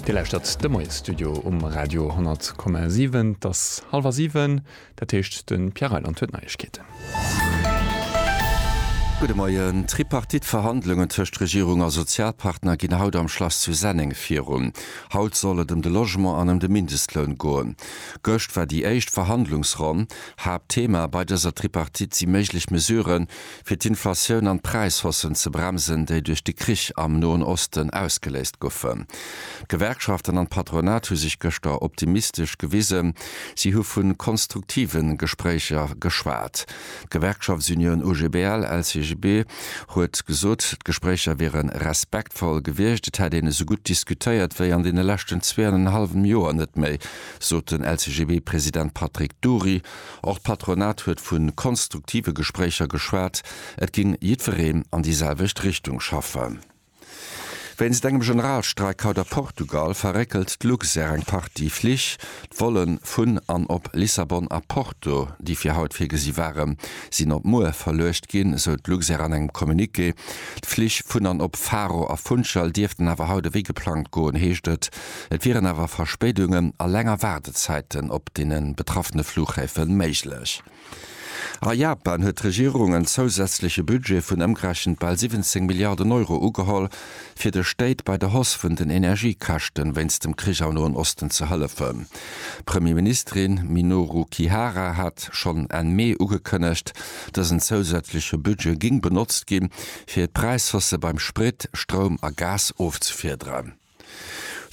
Dir lauschtert de Moiesstudio um Radio 10,7. Et ass hallwer siwen, dat heescht de Pierre Reyland huet Neiegkeeten. Gudde Moien. D'Tripartite-Verhandlungen tëscht Regierung a Sozialpartner ginn haut am Schlass zu Senneng virun. Haut soll et ëm de Logement an ëm de Mindestloun goen. Gëscht war déi éischt Verhandlungsronn. Haaptthema bei dëser Tripartite si méiglech Mesuren, fir d'Inflatioun an d'Präishossen ze bremsen, déi duerch de Krich am Noen Osten ausgeléist goufen. D'Gewerkschaften an d'Patronat hu sech gëschter optimistesch gewisen. Si hu vu konstruktive Gespréicher geschwat. D'Gewerkschaftsunioun OGBL-LCGB huet gesot, d'Gespréicher wiere respektvoll gewiescht. Et hätt een esou gutt diskutéiert wéi an deene leschten zwee an en hallwem Joer net méi, sot den LCGB-President Patrick Dury. Och d'Patronat huet vu konstruktive Gespréicher geschwat. Et géing jiddwereen an déi selwecht Richtung schaffen. Wéinst engem Generalstreik haut a Portugal verréckelt d'Luxair eng Partie Flich. D'Volle vun an op Lissabon a Porto, déi fir haut virgesi waren, sinn op muer verluecht ginn, esou d'Luxair an engem Communiqué. D'Flich vun an op Faro a Funchal dierften awer haut ewéi geplangt goen, heescht et. Et wieren awer Verspéidungen a länger Waardezäiten op deene betraffene Flughäfe méiglech. A Japan huet d'Regierung en zousätzleche Budget vun ëmgerechent bal 17 Milliarden Euro ugeholl, fir de Stéit bei der Hausse vun den Energiekäschte wéinst dem Krich am Noen Osten ze hëllefen. D'Premierministerin Minoru Kihara hat schonn Enn Mee ugekënnegt, dësen zousätzleche Budget géing benotzt gi fir d'Präishausse beim Sprit, Stroum a Gas ofzefiederen.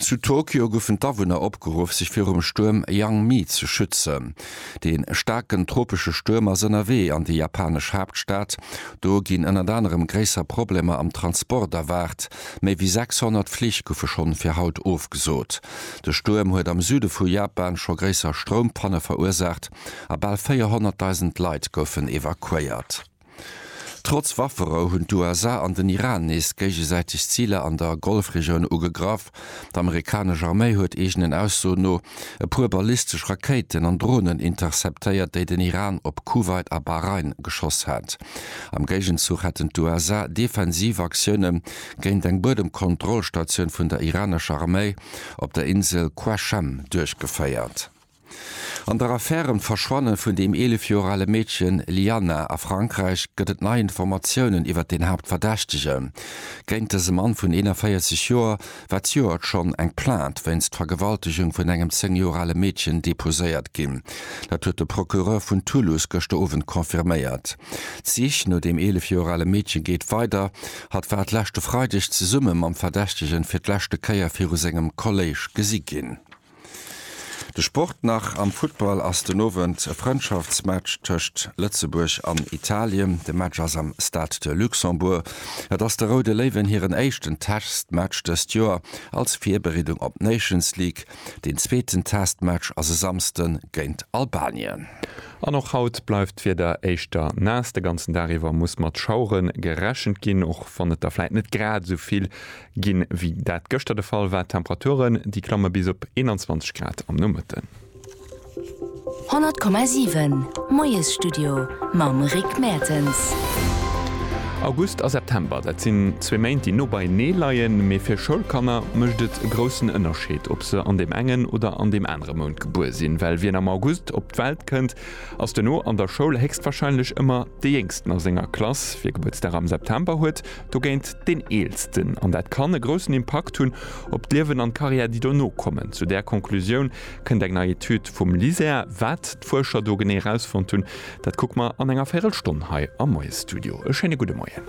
Zu Tokio goufen d'Awunner opgeruff sech virum Stuerm Yang-Mi ze schützen. De staarken tropesche Stuerm ass ënnerwee an déi japanesch Haaptstad. Do ginn ënnert anerem gréisser Problemer am Transport erwaart. Méi wéi 600 Flich goufe schonn fir haut ofgesot. De Stuerm huet am Süde vu Japan scho gréisser Stroumpanne verursaacht a bal 400.000 Leit goufen evakuéiert. Trotz Wafferou hunn d'USA an den Iran nees géigesäiteg Ziler an der Golfregioun ugegraff. D'Amerikanesch Arméi huet eegenen Aussoen no e puer ballistesch Rakéiten an Dronen interceptéiert, déi den Iran op Kuwait a Bahrain geschoss hat. Am Géigenzuch hätten d'USA defensiv Aktioune géint eng Buedemkontrollstatioun vun der iranescher Arméi op der Insel Qashem duerchgeféiert. An der Affär ëm d'Verschwanne vun dem 11 Joer ale Meedchen Lianna a Frankräich gëtt et nei Informatiounen iwwert den Haaptverdächtege géint dëse Mann vun 41 Joer, wat joert schonn eng Plainte wéinst Vergewaltegung vun engem 10 Joer ale Meedchen deposéiert ginn. Dat huet de Procureur vun Toulouse gëschter Owend confirméiert. D'Sich no dem 11 Joer ale Meedche geet weider. Hatt war d'leschte Freideg zesumme mam Verdächtegen fir d'leschte Kéier viru sengem Kolléisch gesi ginn. De Sport nach, Am Futtball ass den Owend e Frëndschaftsmatch tëscht Lëtzebuerg an Italien. De Match ass am Stade de Luxembourg. Et ass de Roude Léiwen hiren éischten Testmatch dëst Joer als Virbereedung op d'Nations League. Deen zweeten Testmatch ass e Samsde géint Albanien. An och haut bleift d'Wieder éischter naass. De ganzen Dag iwwer muss mat Schauere gerechent ginn, och wann et der vläit net grad esou vill Ginn, wéi dat gëschter de Fall war. Temperaturen, déi klamme bis op 21 Grad am Nomëtten. 100,7 Moiesstudio mam Rick Mertens. August a September, dat sinn zwee Méint, déi no beienee leien. Mee fir Schoulkanner mécht et e groussen Ënnerscheed, ob se an deem engen oder an deem anere Mount gebuer sinn. Well wien am August op d'Welt kënnt, ass duerno an der Schoul héchstwarscheinlech ëmmer dee Jéngsten a senger Klass. Wie Gebuertsdag am September huet, dogéint deen Eelsten, an dat kann e groussen Impakt hunn op d'Liewen an d'Karriär, déi dono kommen. Zu där Konklusioun kënnt eng nei Etüd vum LISER. Wat d'Fuerscher do genee erausfonnt hunn, dat kucke mer an enger Véirelstonn hei am Moiesstudio. E schéine gudde Moien.